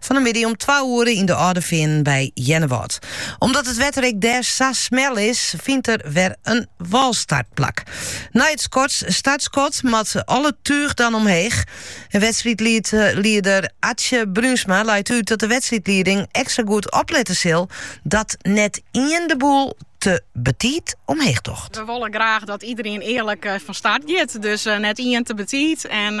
Fan 'e middei om twa oere yn de Alde Feanen by Earnewâld. Omdat it wetter ek dêr sa smel is, fynt der wer in walstartplak. Nei it skot startskot moat al it tuch dan omheech. En wedstriidlieder Atsje Brunsma leit út dat de wedstriidlieding ekstra goed oplette sil dat net ien de boel te betiid omheech docht. We wolle graach dat iedereen earlik fan start giet, dus net ien te betiid en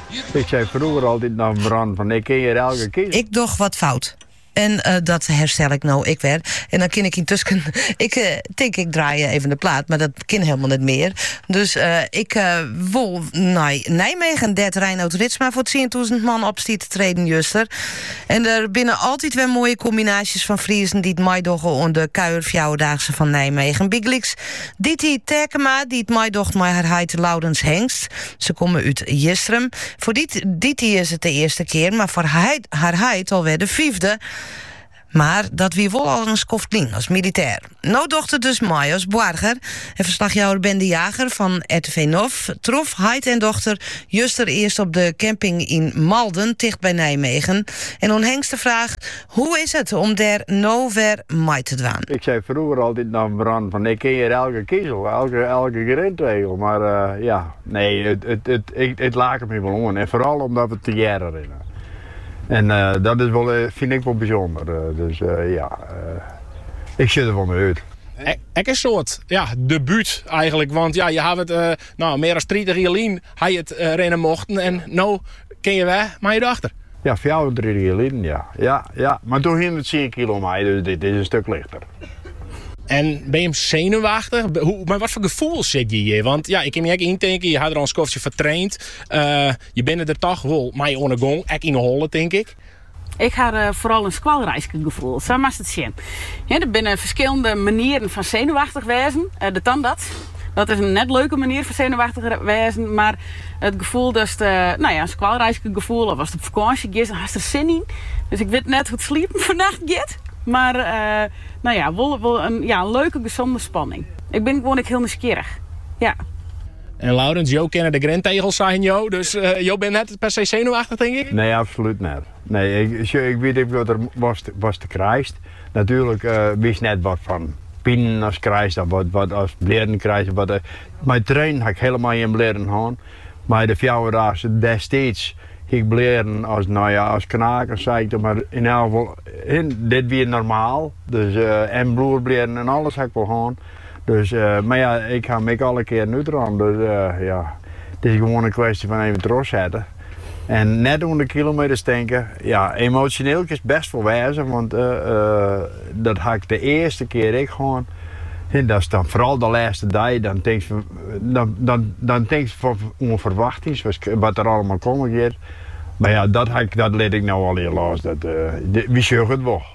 Ik doch wat fout. En dat herstel ik no ik wer. En dan kin ik yntusken. Ik tink ik draai even de plaat, mar dat kin helemaal net mear. Dus ik wol nei Nijmegen, dêr't Reinout Ritsma foar tsientûzen man op stie te treden juster. En der binne altyd wer moaie kombinaasjes fan Friezen dy't meidogge oan de kuierfjouwerdaagse fan Nijmegen. Bygelyks Diti Terkema dy't meidocht mei har heit Laurens Hengst. Se komme út Jistrum. Foar Diti is it de earste kear, mar foar har heit alwer de fiifde. Mar dat wie wol al in skoft lyn as militêr. No docht er dus mei as boarger. En ferslachjouwer Ben de Jager fan RTV Nof trof heit en dochter juster earst op de camping yn Malden, ticht by Nijmegen. En oan Hengst de fraach Hoe is it om dêr no wer mei te dwaan? Ik sei frûger altyd noch Ben fan ik kin hjir elke kizel, elke grintegel, mar ja, nee, it laket my wol oan en foaral omdat we tegearre rinne. En dat is wol, fyn ik wol bysûnder, dus ja, ik sjoch der wol nei út. Ek in soad ja, debút eigenlik, want ja, je hawwe it no mear as tritich jier lyn ha je it rinne mochten en no kin je wer mei je dochter. Ja, fjouwer of tritich jier liden, ja. Ja, ja, mar doe hie ik der tsien kilo mei, dus dit is in stuk lichter. En binne jim senuwachtich? Mei watfoar gefoel sit je hjir? Want ja, ik kin my ek yntinken, je ha der al in skoftje foar traind. Eh, je binne der toch wol mei oan 'e gong, ek yn 'e holle, tink ik. Ik ha foaral in skoalreiske gefoel, sa moatst it sjen. Der binne ferskillende manieren fan senuwachtich wêzen, de tandarts, Dat is in net leuke manier fan senuwachtich wêzen, mar it gefoel datst nou ja, in skoalreiske gefoel of ast op fakânsje giest, dan hast der sin yn. Dus ik wit net hoe't sliepen fannacht giet, mar nou ja, wol in ja in leuke gesonde spanning. Ik bin gewoan ek hiel nijsgjirrich. Ja. En Laurens, jo kinne de grintegels, seinen jo, dus jo binne net per se senuwachtich tink ik? Nee, absolút net. Nee, ik wit ek watst krijst. Natuerlik wist net wat fan pinen as krijst of wat as blierren krijst. Mei trainen ha ik hielendal gjin blierren hân. Mei de fjouwerdaagse destiids hie ik blierren as, no ja, as knaken sei ik dan mar. Yn elk gefal, dit wie normaal. Dus en bloedblierren en alles ha ik wol hân. Dus mar ja, ik ha him ek alle kearen útrûn. Dus ja, it is gewoan in kwestje fan even trochsetten. En net oan de kilometers tinke. Ja, emotioneel kinst best wol wêze, want dat ha ik de earste kear ek hân. Dat is dan foaral de lêste dei, dan tinkst dan, dan, dan tinkst oan ferwachtings, wat der allemaal komme giet. Maar ja, dat, dat lit ik nou allegear los. Dat, uh, wy sjogge it wol.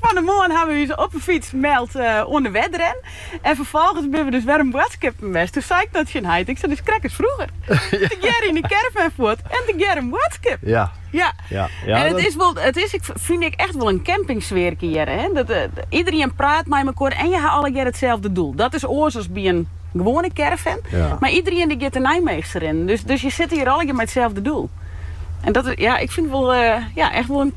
Fan 'e moarn hawwe wy ús op 'e fyts meld oan de Wedren en ferfolgens binne we dus wer om boadskippen west. Doe sei ik noch tsjin heit, ik sei it is krekt as frûger, tegearre yn 'e caravan fuort en tegearre in boadskip. Ja, en it is wol, it is ek fyn ik echt wol in campingsfearke hjir. Iederien praat mei mekoar en je ha allegear itselde doel. Dat is oars as by in gewoane caravan, mar iederien dy giet de Nijmeegse rinnen, dus je sitte hjir allegear mei itselde doel. En dat is, ja, ik fyn it wol, ja, echt wol in.